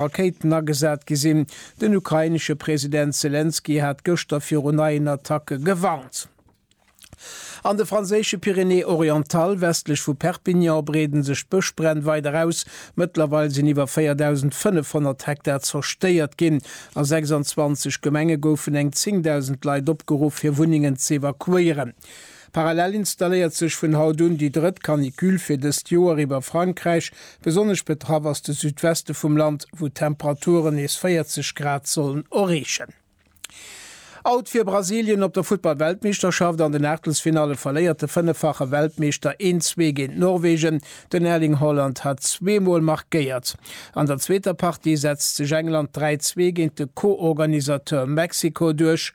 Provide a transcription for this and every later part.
Rakéiten agesat gi sinn. Den ukrainesche President Selenskyj hat gëschter viru neien Attacke gewarnt. An de franséische Pyrénées-Orientales, westlech vu Perpignan, breeden sech d'Bëschbränn weider aus. Mëttlerweil sinn iwwer 4.500 Hektar zerstéiert ginn. A 26 Gemenge goufen eng 10.000 Leit opgeruff, hir Wunnengen z'evakuéieren. Parallel installéiert sech vun haut un déi drëtt Canicule fir dëst Joer iwwer Frankräich. Besonnesch betraff ass de Südweste vum Land, wou d'Temperaturen nees 40 Grad sollen erreechen. Out fir Brasilien op der Futtball-Weltmeeschterschaft, An den Aachtelsfinalle verléiert de fënneffache Weltmeeschter een Zwee géint Norwegen. Den Erling Haaland hat zweemol markéiert. An der zweeter Partie setzt sech England 3, Zwee géint de Co-Organisateur Mexiko duerch.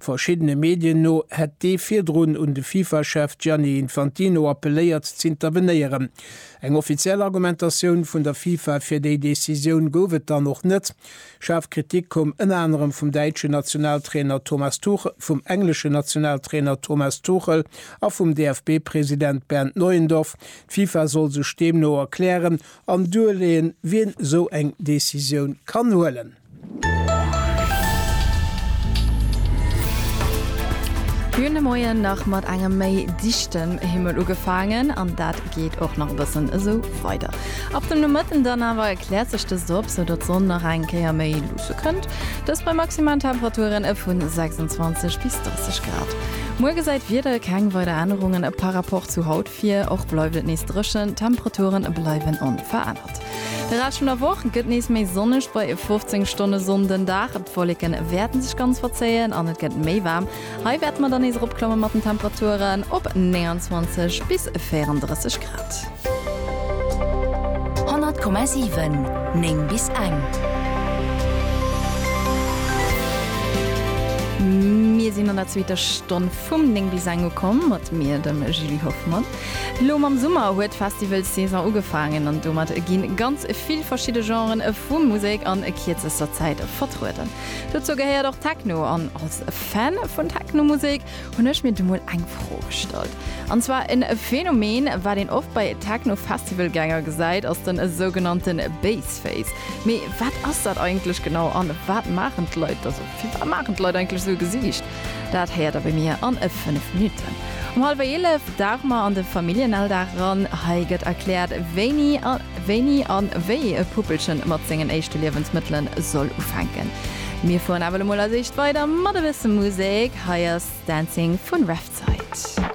Verschiddene Medien no hätt dee virdrun un de Fifa-Chef Gianni Infantino appelléiert z'intervenéieren. Eng offiziell Argumentatioun vun der Fifa fir déi Decisioun gouf et dann och net. Schaarf Kritik koum ënner anerem vum däitschen Nationaltrainer Thomas Tuchel, vum engleschen Nationaltrainer Thomas Tuchel a vum DFB-President Bernd Neuendorf. D'Fifa soll sech deemno erklären an duerleeën, wien esou eng Decisioun kann huelen. Hun de Moien nach mat engem méi dichten Himmel ugefaangen an dat geet och nach e bëssen esou weider. Ab dem Nomëtten dann awer kläert sech dëst op, sou datt d'Sonn nach eng Kéier méi luusse kënnt, dëst bei maximalen Temperaturen vu 26 bis 30 Grad. Muer gesäit d'Wieder keng weider Ännerungen par Rapport zu haut vir. Fir och bleift et nees dréchen, d'Temperature bleiwen onverännert. De Rescht vun der Woch gëtt nees méi sonneg, bei 15 Stonne Sonn den Dag. D'Wolleke wäerte sech ganz verzéien an et gëtt méi waarm. Hei wäerte mer dann nees eropklamme mat den Temperaturen op 29 bis 34 Grad. 100,7 9 bis eng. Mir sinn an der zweeter Stonn. Vum 9 bis eng ukomm, mat mir, dem Julie Hoffmann. Lo mam Summer huet d'Festivalssaison ugefaangen an domat ginn ganz vill verschidde Genren vu Musek an kierzester Zäit vertrueden. Dozou gehéiert och Techno an als Fan vun Technomusek hunn ech mir du mol eng Fro gestallt. An zwar en Phänomen wat een oft bei Techno-Festivalgänger gesäit ass den sougenannte Baseface. Mee wat ass dat eigentlech genau an wat maachen d'Leit, also firwat maachen d'Leit eigentlech sou e Gesiicht? Dat héiert der bei mir an e 5 Minutten. Um hallwer 11 dauche mer an de Familljenalldag eran. Hei gëtt erkläert, wéini a wéini an wéi e Puppelchen mat sengen éischte Liewensmëttelen soll ufänken. Mir fueren awer elo mol als éischt weider mat e bësse Musek. Hei ass Dancing vun Revside.